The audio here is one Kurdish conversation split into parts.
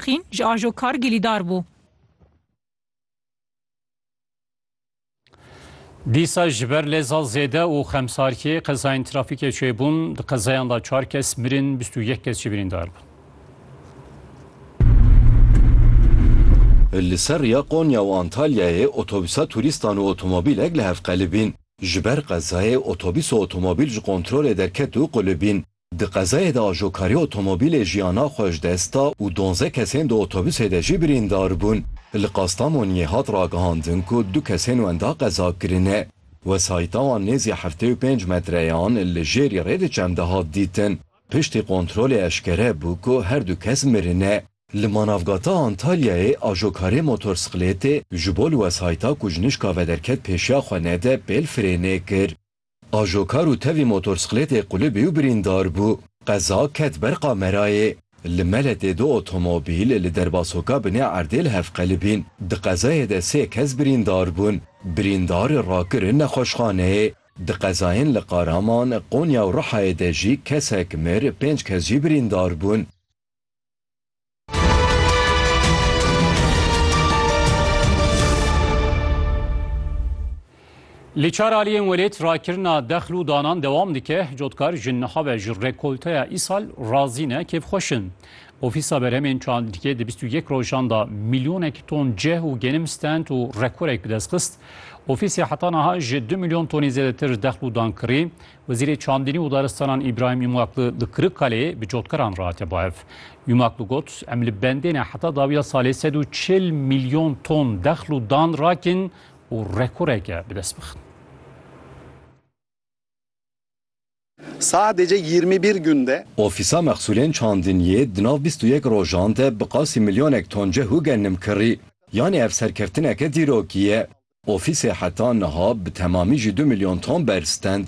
Xîn ji ajo kar gilîdar bû. Dîsa ji ber lê zal zêde û xemsarkê qezayên trafîkê çêbûn. Di qezayan de çar kes mirin, bîst û yek kes jî birîndar bûn. Li ser riya Konya û Antalyayê otobîsa turîstan û otomobîlek li hev qelibîn. Ji ber qezayê otobîs û otomobîl ji kontrolê derket û qulibîn. Di qezayê de ajokarî otomobîlê jiyana xwe ji dest da û donzdeh kesên di otobusê de jî birîndar bûn. Li Kastamoniyê hat ragihandin ku du kesên wenda qeza kirine. Wesayîta wan nêzî heftê û pênc metreyan li jêrî rê di çem de hat dîtin. Piştî kontrolê eşkere bû ku her du kes mirine. Li Manavgata Antalyayê ajokarê motorsiklêtê ji bo li wesayîta ku ji nişka vederket pêşiya xwe nede pêl firênê kir. Ajokar û tevî motorsklêtê qulibî û birîndar bû. Qeza ket ber kamerayê. Li Meletê du otomobîl li derbasoka binê erdê li hev qelibîn. Di qezayê de sê kes birîndar bûn. Birîndar rakirin nexweşxaneyê. Di qezayên li Qaraman, Qonya û Rihayê de jî kesek mir, pênc kes jî birîndar bûn. Li çar aliyên welêt rakirina dexl û danan dewam dike. Cotkar ji niha ve ji rekolteya îsal razî ne kêfxweş in. Ofîsa berhemên çandîkê di bîst û yek rojan da milyonek ton cih û genim stend û rekorek bi dest xist. Ofîsê heta niha ji du milyon tonî zêdetir dexl û dan kirî. Wezîrê Çandînî û Daristanan Îbrahîm Îmakli li Kirikkaleyê bi cotkaran rehate bahev. Îmakli got, Em li bendê ne heta dawiya salê sed û çil milyon ton dexl û dan rakin û rekoreke bi dest bixin. Sadece yirmi bir günde. Ofîsa Mexsûlên Çandîniyê di nav bîst û yek rojan de bi qasî milyonek ton cih û gennim kirî. Yanî ev serkeftineke dîrokî ye. Ofîsê heta niha bi temamî ji du milyon ton berz stend.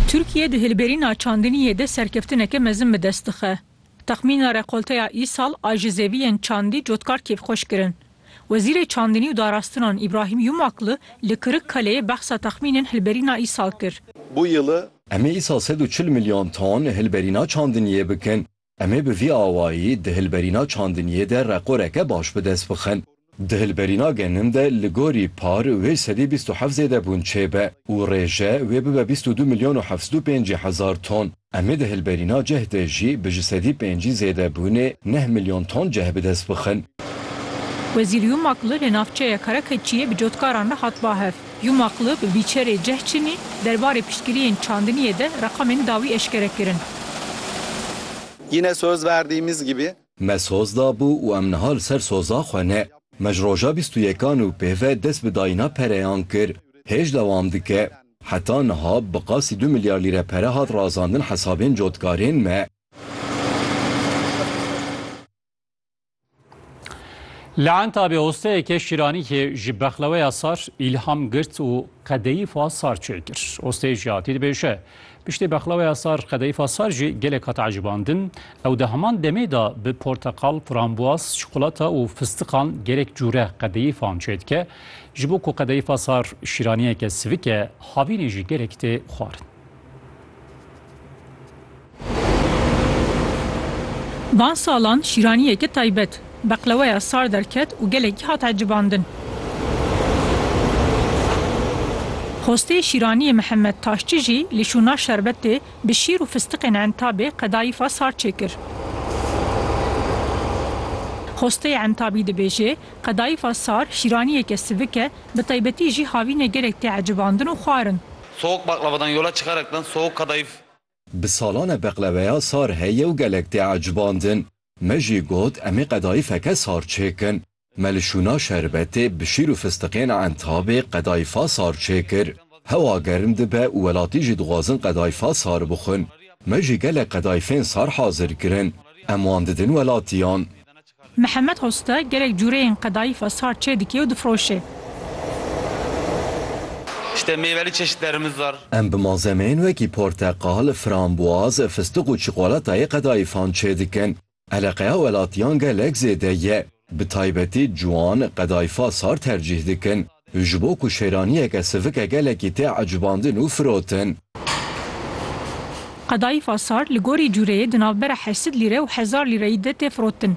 Tirkiye di hilberîna çandiniyê de serkeftineke mezin bi dest dixe. Texmîna rekolteya îsal a ji zeviyên çandî cotkar kêfxweş kirin. Wezîrê Çandinî û Darastinan Îbrahîm Yumakli li Kirikkaleyê behsa texmînên hilberîna îsal kir. Em ê îsal sed û çil milyon ton hilberîna çandiniyê bikin. Em ê bi vî awayî di hilberîna çandiniyê de reqoreke baş bi dest bixin. Di hilberîna genim de li gorî par wê sedî bîst û heft zêdebûn çêbe û rêje wê bibe bîst û du milyon û heft sed û pêncî hezar ton. Em ê di hilberîna cih de jî bi ji sedî pêncî zêdebûnê neh milyon ton cih bi dest bixin. Wezîrî û makli li navçeya Karakeçiyê bi cotkaran re hat bahev. Yumaklı bi bîçerê ceh çinî derbarê piştgiriyên çandiniyê de reqamên dawî eşkere kirin. Yine söz verdiğimiz gibi. Me soz dabû û em niha li ser soza xwe ne. Me ji roja bîst û yekan û pê ve dest bi dayîna pereyan kir. Hêj dewam dike. Heta niha bi qasî du milyar lîre pere hat razandin hesabên cotkarên me. Li Entabê osteyeke şîraniyê ji bexleweya sar îlham girt û qedeyîfa sar çêkir. Osteyê ji hatî dibêje, Piştî bexleweya sar qedeyîfa sar jî gelek hat ecibandin. Ew di heman demê de bi porteqal, frambuaz, çikolata û fistiqan gelek cûre qedeyîfan çêdike. Ji bo ku qedeyîfa sar şîraniyeke sivik e, havînê jî gelek tê xwarin. Van salan şîraniyeke taybet, beqleweya sar derket û gelekî hat ecibandin. Xwestê şîraniyê Mihemed Taşçi jî li şûna şerbetê bi şîr û fistiqên entabê qedayîfa sar çêkir. Xwesteyê entabî dibêje, Qedayîfa sar şîraniyeke sivik e, bi taybetî jî havînê gelek tê ecibandin û xwarin. Soğuk baklavadan yola çıkaraktan soğuk kadayıf Bi salan e beqleweya sar heye û gelek tê ecbandin. Me jî got em ê qedayî feke sar çêkin. Me li şûna şerbetê, bi şîr û fistiqên entabê qedayî fa sar çêkir. Hewa germ dibe û welatî jî dixwazin qedayî fa sar bixwin. Me jî gelek qedayîfên sar hazir kirin. Em wan didin welatiyan. Mihemed Usta gelek cureyên qedayîfa sar çêdike û difiroşe. Şitê mêvelî çeşitlerimiz var. Em bi malzemeyên wekî porteqal, frambuaz, fistiq û çikolatayê qedayîfan çêdikin. Eleqeya welatiyan gelek zêde ye. Bi taybetî ciwan qedayîfa sar tercîh dikin. Ji bo ku şêraniyeke sivike gelekî tê ecbandin û firotin. Qedayîfa sar li gorî cûreyê di navbera heşt lîre û hezar lîreyî de tê firotin.